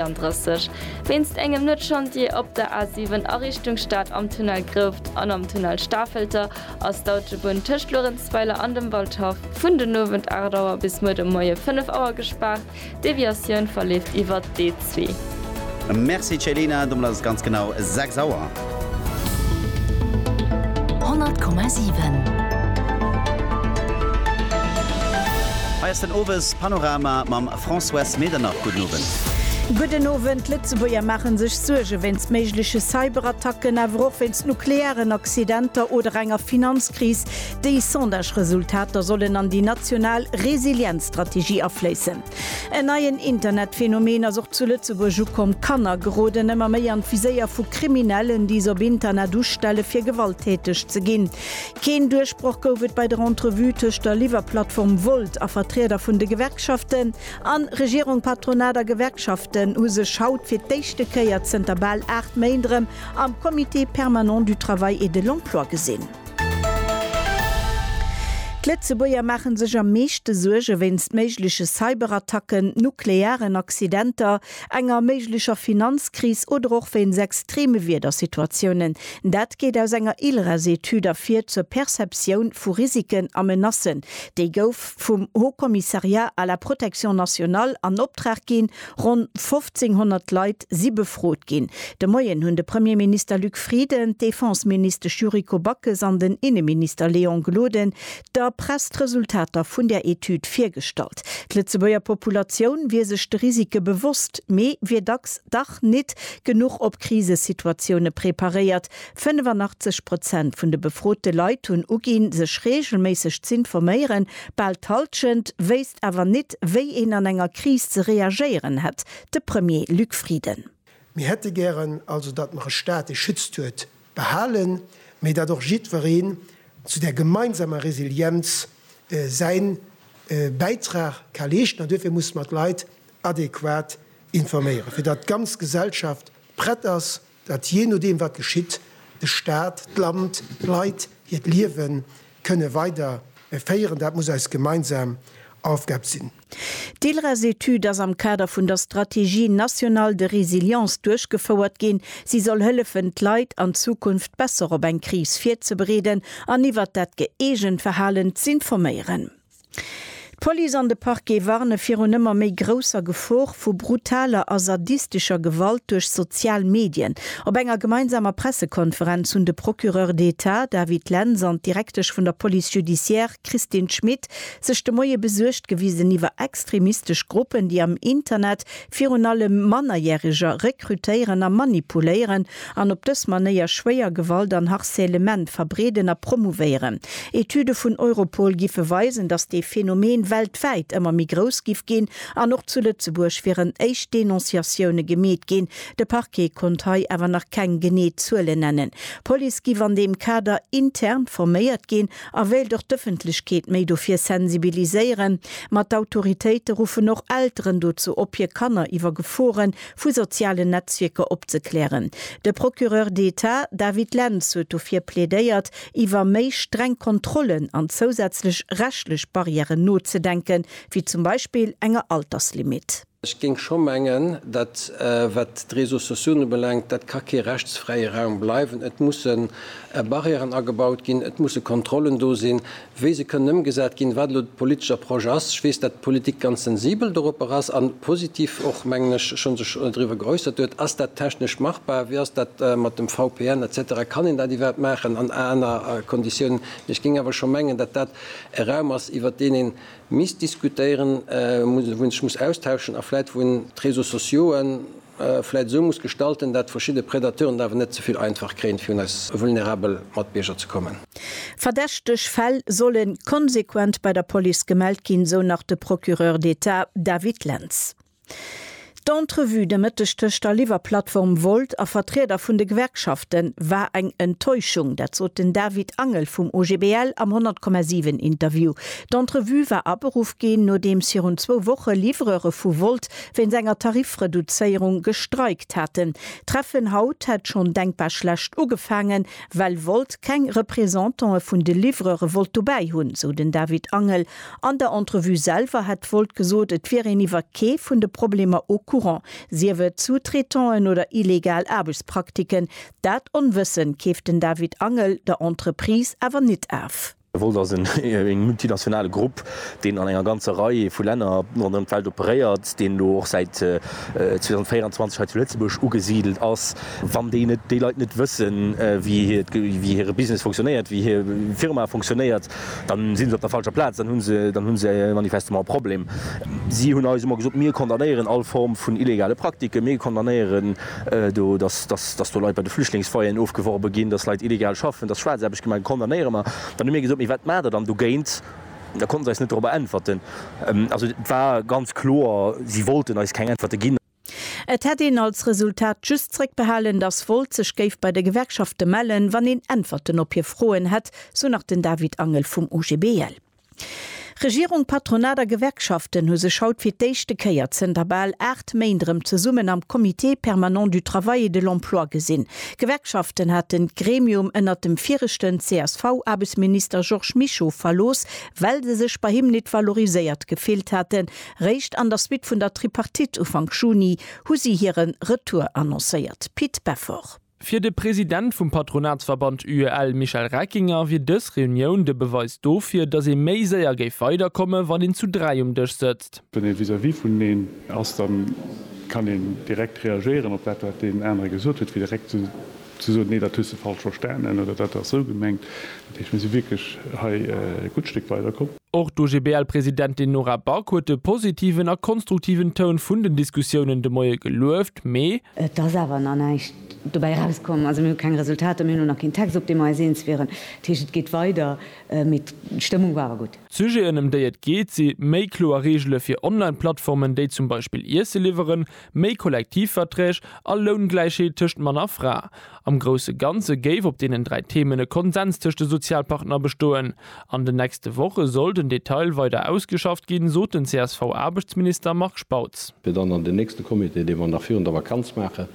34, wéinst engem Net-Chantier op der A 7 a Richtung Stad am Tunnel Grouft an am Tunnel Stafelter ass d'Autobunn tëscht Luerenzweiler an dem Waldhaff vun den Owend 8 Auer bis muer de Moie 5 Auer gespaart. D'Deviatioun verleeft iwwert d'E2. Merci Céline, domat ass et ganz genau 6 Auer. 100,7. Hei ass den Owes Panorama mam. Françoise Medernach, Gudden Owend. Gudden Owend. D'Lëtzebuerger maachen sech Suerge wéinst méigleche Cyberattacken, awer och wéinst nuklearen Accidenter oder enger Finanzkris. Déi Sondage-Resultater sollen an déi national Resilienzstrategie afléissen. En neien Internetphänomen ass och zu Lëtzebuerg ukomm, Kanner geroden ëmmer méi an d'Viséier vu Kriminellen, déi se op Internet ustellen, fir gewalttäteg ze ginn. Keen Duerchbroch gouf et bei der Entrevue tëscht der Liwwerplattform Volt a Vertrieder vun de Gewerkschaften. An Regierung, Patronat a Gewerkschaften hu sech haut fir d'éischte Kéier zënter bal 8 Méint erëm am Comité permanent du travail et de l'emploi gesinn. D'Lëtzebuerger maache sech am meeschte Suerge wéinst méigleche Cyberattacken, nuklearen Accidenter, enger méiglecher Finanzkris oder och wéinst extreme Wiedersituatiounen. Dat geet aus enger ILRES-Etüd ervir zur Perceptioun vu Risiken a Menacen. Déi gouf vum Haut Commissariat à la protection nationale an Optrag ginn. Ronn 1.500 Leit si befrot ginn. De Moien hunn de Premierminister Luc Frieden, d'Defenseministesch Yuriko Backes an den Inneminister Léon Gloden der Press d'Resultater vun där Etüd virgestallt. D'Lëtzebuerger Populatioun wier sech de Risike bewosst, mee wier dacks dach nit genuch op Krisesituatioune preparéiert. 85 Prozent vun de befrote Leit hunn uginn, sech reegelméisseg z'informéieren. Bal d'Hallschent wéisst awer nit, wéi een an enger Kris ze reagéieren hätt. De Premier Luc Frieden. Mir hätte gären also, datt mer e Staat, dee schützt, huet, Behalen, mee datt och jiddwereen zu där gemeinsamer Resilienz säi Bäitrag ka leeschten. An duerfir musse mer d'Leit adequat informéieren, fir datt d'ganz Gesellschaft prett ass, datt jee nodeem wat geschitt, de Staat, d'Land, d'Leit hiert Liewen Kënne weider féieren. Dat muss eis gemeinsam Aufgab sinn. D'ILRES-Etüd ass am Kader vun der Stratégie nationale de résilience duerchgefouert ginn. Si soll hëllefen, d'Leit an Zukunft besser op eng Kris virzebereeden an iwwert dat gëeegent Verhalen z'informéieren. D'Police an de Parquet warne virun ëmmer méi grousser Gefor vu brutaler a sadistescher Gewalt duerch sozial Medien. Op enger gemeinsamer Pressekonferenz hunn de Procureur d'Etat David Lentz an d'Direktesch vun der Police judiciaire Christine Schmit sech de Moie besuergt gewisen iwwer extremistesch Gruppen, déi am Internet virun allem Mannerjäreger rekrutéieren a manipuléieren. an op dës Manéier schwéier Gewalt an Harcèlement verbreeden a promouvéieren. Etüde vun Europol giffe weisen, datt dee Phänomen weltwäit ëmmer méi grouss giff ginn an och zu Lëtzebuerg wieren éischt Denonciatioune gemeet ginn. De Parquet konnt hei awer nach keng genee Zuelen nennen. D'Police giff an deem Kader intern forméiert ginn a wéilt och d'Ëffentlechkeet méi dofir sensibiliséieren. Ma d'Autoritéite ruffen och Elteren dozou op, hir Kanner iwwer Geforen vu sozialen Netzwierker opzeklären. De Procureur d'État David Lentz huet dofir plädéiert, iwwer méi streng Kontrollen an zousätzlech rechtlech Barrièren nozedenken, wéi zum Beispill enger Alterslimit. Ech géing scho mengen, dat wat d'Réseaux sociaux ubelaangt, dat ka kee rechtsfräie Raum bleiwen. Et musse Barrièren agebaut ginn, et musse Kontrollen do sinn, wéi se kënnen ëmgesat ginn, wat elo de politesche Approche ass. Ech weess, datt d'Politik ganz sensibel doropper ass a positiv och, mengen ech, scho sech driwwer geäussert huet. Ass dat technesch machbar? Wéi ass dat mat dem VPN et cetera? Kann een dat iwwerhaapt maachen an aner Konditiounen? Mee ech géing awer scho mengen, datt dat e Raum ass, iwwert deen ee misst diskutéieren, wou ee sech muss austauschen a vläicht wou een d'Réseaux sociauxen, vläit esou muss gestalten, dat verschidde Predateuren et awer net ze vill einfach kréien, fir un eis vulnerabel Matbierger ze kommen. Verdächteg Fäll solle konsequent bei der Police gemellt ginn, esou nach de Procureur d'État David Lentz. D'Entrevue de Mëtteg tëscht der Liwwerplattform Wolt a Vertrieder vun de Gewerkschafte war eng Enttäuschung, dat sot den David Angel vum OGBL am 100,7 Interview. D'Entrevue war aberuff ginn, nodeems virun zwou Woche Livreure vu Wolt wéinst enger Tarifreduzéierung gestreikt haten. D'Treffen haut hätt schonn denkbar schlecht ugefaangen, well Volt keng Representantë vun de Livreure wollt dobäi hunn, sou den David Angel. An der Entrevue selwer hätt Volt gesot, et wier een iwwer kee vun de Problemer au courant, sief et Sous-traitanten oder illegal Aarbechtspraktiken. Dat Onwëssen keeft den David Angel der Entreprise awer nit af. Volt ass e multinationale Grupp, deen an enger ganzer Rei vu Länner ronderëm d'Welt operéiert, deen elo och säit 2024 hei zu Lëtzebuerg ugesidelt ass. Wann déi net, déi Leit net wëssen, wéi hire Business funktionéiert, wéi hir Firma funktionéiert, dann si se op der falscher Plaz, dann hunn se, dann hunn se manifestement e Problem. Si hunn eis ëmmer gesot, Mir condamnéieren all Form vun illegale Praktiken, mir condamnéieren Do, dass, dass, dass do Leit bei de Flüchtlingsfoyeren ofgeworbe ginn, dass Leit illegal schaffen, dass Schwaarzaarbecht gemaach gëtt, condamnéiere mer. Dann hu mir gesot, Mee wat maacht Der dann dogéint? Da konnten se eis net dorobber äntwerten. Also et war ganz kloer, si wollten eis keng Äntwerte ginn. Et hätt een als Resultat just zréckbehalen, dass Volt sech géif bei de Gewerkschafte mellen, wann een Äntwerten op hir Froen hätt, sou nach den David Angel vum OGBL. Regierung, Patronat a Gewerkschaften hu sech haut fir d'éischte Kéier zënter bal 8 Méint erëm zesummen am Comité permanent du travail et de l'emploi gesinn. D'Gewerkschaften haten d'Gremium ënnert dem viregten CSV-Aarbechtsminister Georges Mischo verlooss, well se sech bei him nit valoriséiert gefillt haten. Réischt an der Suite vun der Tripartite Ufank Juni hu si hire Retour annoncéiert. Pit Beffort. Fir de President vum Patronatsverband UEL Michel Reckinger wier dës Reunioun de Beweis dofir, datt ee méi séier géif weider komme wann een zu 3 um Dësch sëtzt. Wann ee vis-à-vis vuneneen ass, da kann een direkt reagéieren op dat wat deen anere gesot huet, fir direkt ze soen, nee dat hues de falsch verstanen oder dat ass sou gemengt. Dat heescht mir si wierklech hei e gutt Stéck weider komm. Och d'OGBL-Presidentin Nora Back huet de positiven a konstruktiven Toun vun den Diskussiounen de Moie gelueft, mee. Et ass awer nach näischt dobäi erauskomm. Also mir hu keng Resultater, mir hunn och nach keen Text, op dee mer eis eens wieren. Dat heescht, et geet weider, mee d'Stëmmung war awer gutt. D'Sujeten, ëm déi et geet, si méi kloer Reegele fir Online-Plattformen, déi zum Beispill Iesse liwweren, méi Kollektivverträg a Loungläichheet tëscht Mann a Fra. Am grousse Ganze géif op deenen dräi Themen e Konsens tëscht de Sozialpartner bestoen. An den nächste Woche soll den Detail weider ausgeschafft ginn, sot den CSV-Aarbechtsminister Marc Spautz. Fir dann an den nächste Comité, dee mer nach virun der Vakanz maachen,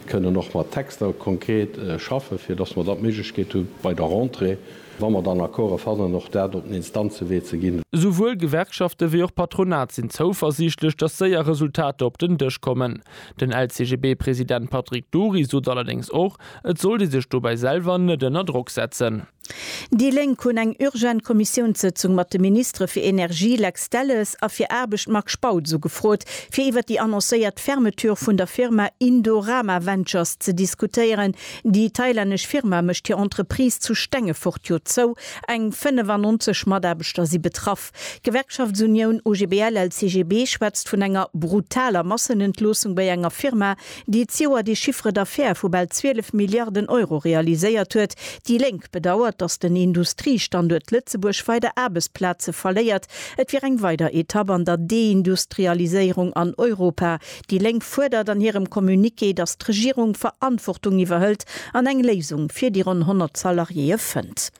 kënnen och mat Texter konkret schaffen, fir dass mer dann d'Méiglechkeet hu bei der Rentrée, wa mer dann Accorde fannen, och dat op den Instanzewee ze ginn. Esouwuel Gewerkschafte wéi och Patronat sinn zouversiichtlech, dass séier Resultater op den Dësch kommen. Den LCGB-President Patrick Dury sot allerdéngs och, et sollt ee sech dobäi selwer net ënner Drock setzen. Déi Lénk hunn eng urgent Kommissiounssëtzung mat de Ministere fir Energie Lex Delles a fir Aarbecht Marc Spautz ugefrot, fir iwwer déi annoncéiert Fermeture vun der Firma Indorama Ventures ze diskutéieren. Déi thailännesch Firma mécht hir Entreprise zu Stengefort jo zou, eng 95 Mataarbechter si betraff. D'Gewerkschaftsunioun OGBL-LCGB schwätzt vun enger brutaler Massenentloossung bei enger Firma, déi d'Joer de Chiffre d'affaires vu bal 12 Milliarden Euro realiséiert huet. Déi Lénk bedauert, datt den Industriestanduert Lëtzebuerg weider Aarbechtsplaze verléiert. Et wier eng weider Etapp an der Deindustrialiséierung an Europa. Déi Lénk fuerdert an hirem Communiqué, datt d'Regierung Verantwortung iwwerhëlt an eng Léisung fir déi ronn 100 Salariéeë fënnt.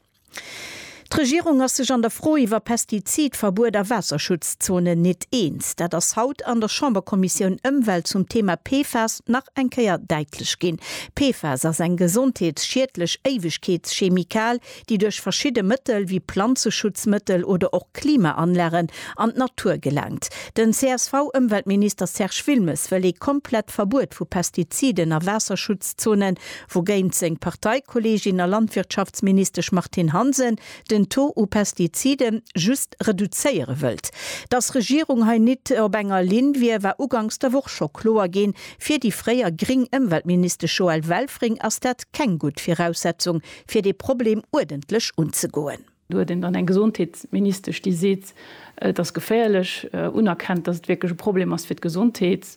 D'Regierung ass sech an der Fro iwwer Pestizidverbuet a Waasserschutzzonen nit eens. Dat ass haut an der Chamberkommissioun Ëmwelt zum Thema PFAS nach eng Kéier däitlech ginn. PFAS ass eng gesondheetsschiedlech Éiwegkeetschemikal, déi duerch verschidde Mëttel wéi Planzeschutzmëttel oder och Klimaanlagen an d'Natur gelaangt. Den CSV-Ëmweltminister Serge Wilmes wëll ee komplett Verbuet vu Pestiziden a Waasserschutzzonen wougéint seng Parteikolleegin a Landwirtschaftsministesch Martine Hansen den Taux u Pestizide just reduzéiere wëllt. Datt Regierung hei nit op enger Linn wier, war uganks der Woch scho kloer ginn. Fir déi fréier gréng Ëmweltministesch Joëlle Welfring ass dat keng gutt Viraussetzung, fir dee Problem uerdentlech unzegoen. Do huet een dann eng Gesondheetsministesch, déi seet, et ass geféierlech, unerkennt, datt et wierklech e Problem ass fir d'Gesondheet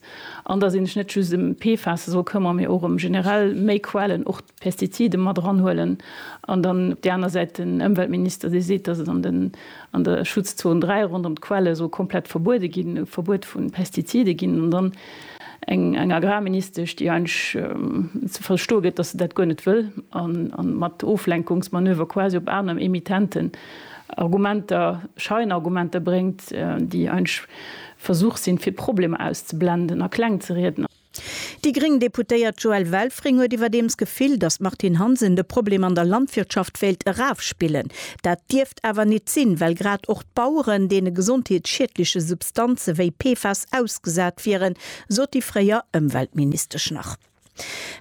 an datt ee sech net just ëm d'PFASe soll këmmere mee och ëm generell méi Quellen, och d'Pestizide mat eranhuelen. An dann op där aner Säit den Ëmweltminister, dee seet, datt et an der Schutzzon 3 ronderëm d'Quelle soll komplett verbuede ginn, e Verbuet vu Pestizide ginn. An dann Eng Agrarministesch, déi eigentlech ze verstoe gëtt, dass se dat guer net wëll a mat Oflenkungsmanöver quasi op aner Emittenten Argumenter, Scheinargumenter bréngt, déi eigentlech e Versuch sinn, fir Problemer auszeblenden a kleng ze rieden. Déi gréng Deputéiert Joëlle Welfring huet iwwerdeems d'Gefill, dass d'Martine Hansen de Problem an der Landwirtschaft wéilt erafspillen. Dat dierf awer nit sinn, well grad och d'Baueren deene gesondheetsschiedleche Substanze wéi PFAS ausgesat wieren, sot déi fréier Ëmweltministesch nach.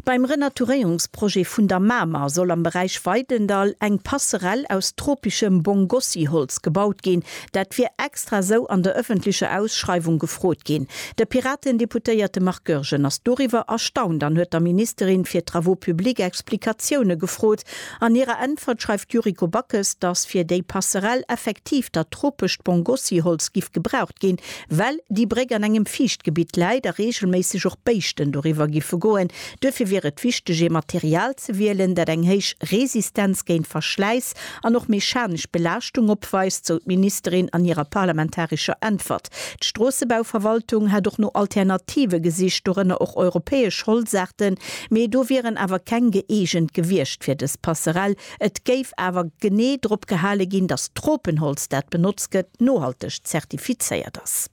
Beim Renaturéierungsprojet vun der Mamer soll am Beräich Weidendall eng Passerell aus tropeschem Bongossi-Holz gebaut ginn. Dat wier extra esou an der ëffentlecher Ausschreiwung gefrot ginn. De Piraten-Deputéierte Marc Goergen ass doriwwer erstaunt an huet der Ministerin fir Travaux publics Explikatioune gefrot, An hirer Äntwert schreift d'Yuriko Backes, datt fir déi Passerell effektiv dat tropescht Bongossi-Holz giff gebraucht ginn, well déi Bréck an engem Fiichtgebitt läit a reegelméisseg och Béischten doriwwer giffe goen. Duerfir wier et wichteg, ee Material ze wielen, dat eng héich Resistenz géint Verschläiss an och mechanesch Belaaschtung opweist, sou d'Ministerin an hirer parlamentarescher Äntwert. D'Stroossebauverwaltung hätt och no Alternative gesicht, dorënner och europäesch Holzaarten, mee do wieren awer keng gëeegent gewiescht fir dës Passerell. Et géif awer genee drop gehale ginn, datt d'Tropenholz, dat benotzt gëtt, nohalteg zertifizéiert ass.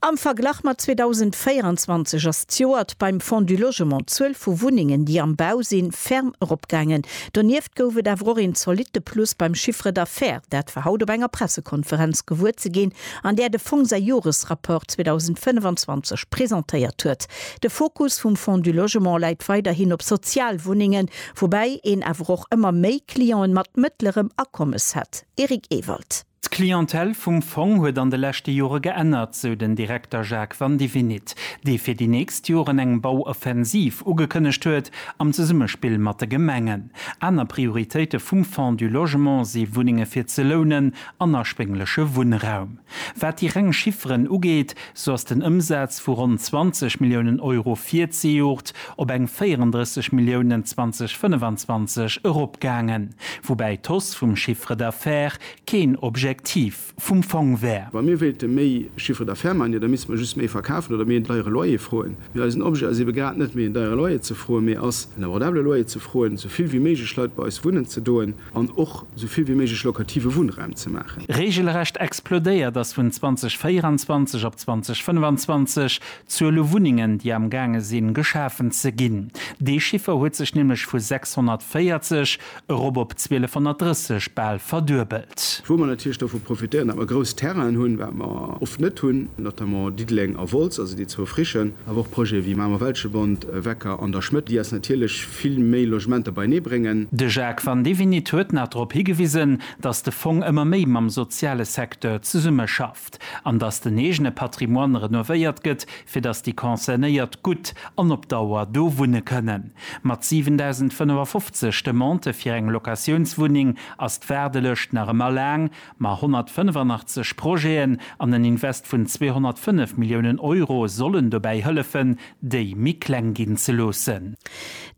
Am Verglach mat 2024 ass d'Joert beim Fonds du Logement d'Zuel vu Wunnengen, déi am Bau sinn, ferm eropgaangen. Donieft gouf et awer och een zolitte Plus beim Chiffre d'affaires. Dat war haut op enger Pressekonferenz gewuer ze ginn, an där de Fong säi Joresrapport 2025 presentéiert huet. De Fokus vum Fonds du Logement läit weiderhin op Sozialwunnengen, woubäi een awer och ëmmer méi Clienten mat mëttlerem Akommes hätt. Eric Ewald. D'Clientèle vum Fong huet an de leschte Jore geännert, sou den Direkter Jacques Vandivinit, dee fir déi nächst Joren eng Bauoffensiv ugekënnegt huet, am Zesummespill mat de Gemengen. Aner Prioritéite vum Fonds du Logement si Wunnenge fir ze lounen an erschwéngleche Wunnraum. Wat déi reng Chifferen ugeet, Sou ass den Ëmsaz vu ronn 20 Milliounen Euro virzejoert op eng 34 Milliounen 2025 eropgaangen, woubäi d'Hausse vum Chiffre d'affaires keen Objektiv vum Fong wär. Wa mir wéilte méi Chiffre d'affaires maachen, jo da misste mer just méi verkafen oder méi en deiere Loyer froen. Mee eisen Objet ass ebe grad net méi en deiere Loyer ze froen, mee ass en abordable Loyer ze froen, sou vill wéi méiglech Leit bei eis wunnen ze doen. an och esou vill wéi méiglech lokative Wunnraum ze maachen. Reegelrecht explodéiert ass vun 2024 op 2025 d'Zuel u Wunnengen, déi am gaange sinn, geschafen ze ginn. Dee Chiffer huet sech nämlech vu 640 erop op 1230 bal verduebelt. Wou mer natierlech dovu profitéieren, datt mer grouss Terrainen hunn, wat mer oft net hunn, notamment Diddeleng a Wolz, also déi zwou frischen, awer och Projete wéi Mamer-Welschebond, Wecker an der Schmëtt, déi eis natierlech, vill méi Logementer beienee bréngen. De Jacques Vandivinit huet nach drop higewisen, datt de Fong ëmmer méi mam soziale Secteur zesummeschafft an datt den eegene Patrimoine renovéiert gëtt, fir datt déi Concernéiert gutt an op Dauer do wunne kënnen. Mat 7.055 Demandë fir eng Locatiounswunneng ass d'Waardelëscht nach ëmmer laang, Ma 185 Projeten an en Invest vun 205 Milliounen Euro sollen dobäi hëllefen, déi méi kleng ginn ze loossen.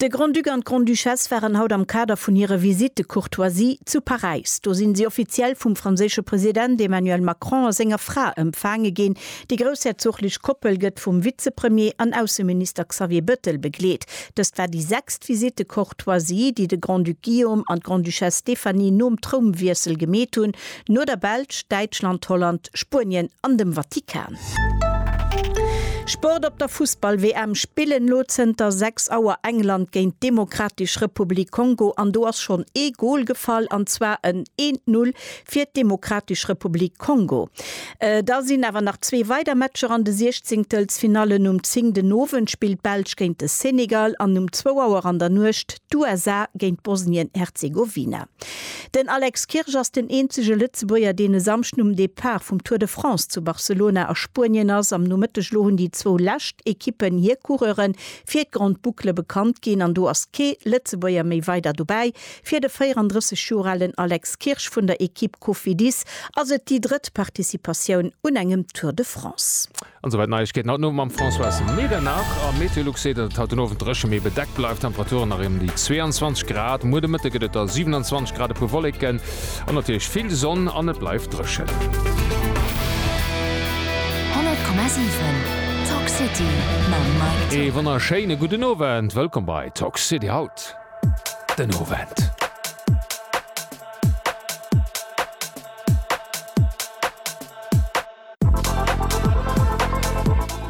De Grand-Duc an d'Grande-Duchesse waren haut am Kader vun hire Visite de courtoisie zu Paräis. Do sinn si offiziell vum franséische President Emmanuel Macron a senger Fra empfaange ginn. Déi groussherzoglich Koppel gëtt vum Vizepremier an Ausseminister Xavier Bettel begleet. Dëst war déi sechst Visite de D'Choisie, déi de Grand-Duc Guillaume an d'Grande-Duchesse Stéphanie nom Trounwiessel gemeet hunn, no der Belsch, Däitschland, Holland, Spuenien an dem Vatikan. Sport Op der Fussball-WM spillen elo zënter 6 Auer England géint d'Demokratesch Republik Kongo an do ass schonn ee Gol gefall, an zwar en 1-Null fir d'Demokratesch Republik Kongo. Da sinn awer nach zwee weider Matcher an de Siechzéngtelsfinallen, Um 10 den Owend spillt d'Belsch géint de Senegal an um zwou Auer an der Nuecht d'USA géint Bosnien-Herzegowina. Den Alex Kirsch ass den eenzege Lëtzebuerger, deen e Samschden um Depart vum Tour de France zu Barcelona a Spuenien ass. Am Nomëtteg elo hunn déi zwou lescht Ekippen hir Coureure fir d'Grande Boucle bekannt ginn an do ass kee Lëtzebuerger méi weider dobäi. Fir de 34 Joer alen Alex Kirsch vun der Ekipp Cofidis ass et déi drëtt Participatioun un engem Tour de France. An esouwäit Neiegkeeten haut den Owend mam Françoise Medernach. A Meteolux seet, datt et haut den Owend dréche mee bedeckt bleift. Temperaturen nach ëm déi 22 Grad. Muer de Mëtte gëtt et da 27 Grad, e puer Wolleken an natierlech vill Sonn an et bleift dréchen. 100,7 Talk City mam Mike Zimerman. Ee wonnerschéine gudden Owend, wëllkomm bei Talk City haut. den Owend.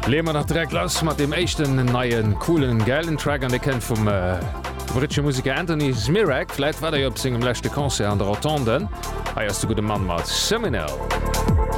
Leeë mer nach direkt lass mat deem éischten neien, coolen, gäilen Track an dee kënnt vum britsche Museker Anthony Zmirak. Vläit war der jo op sengem leschte Concert an der Rotonde. Hei ass de gudde Mann mat Seminal.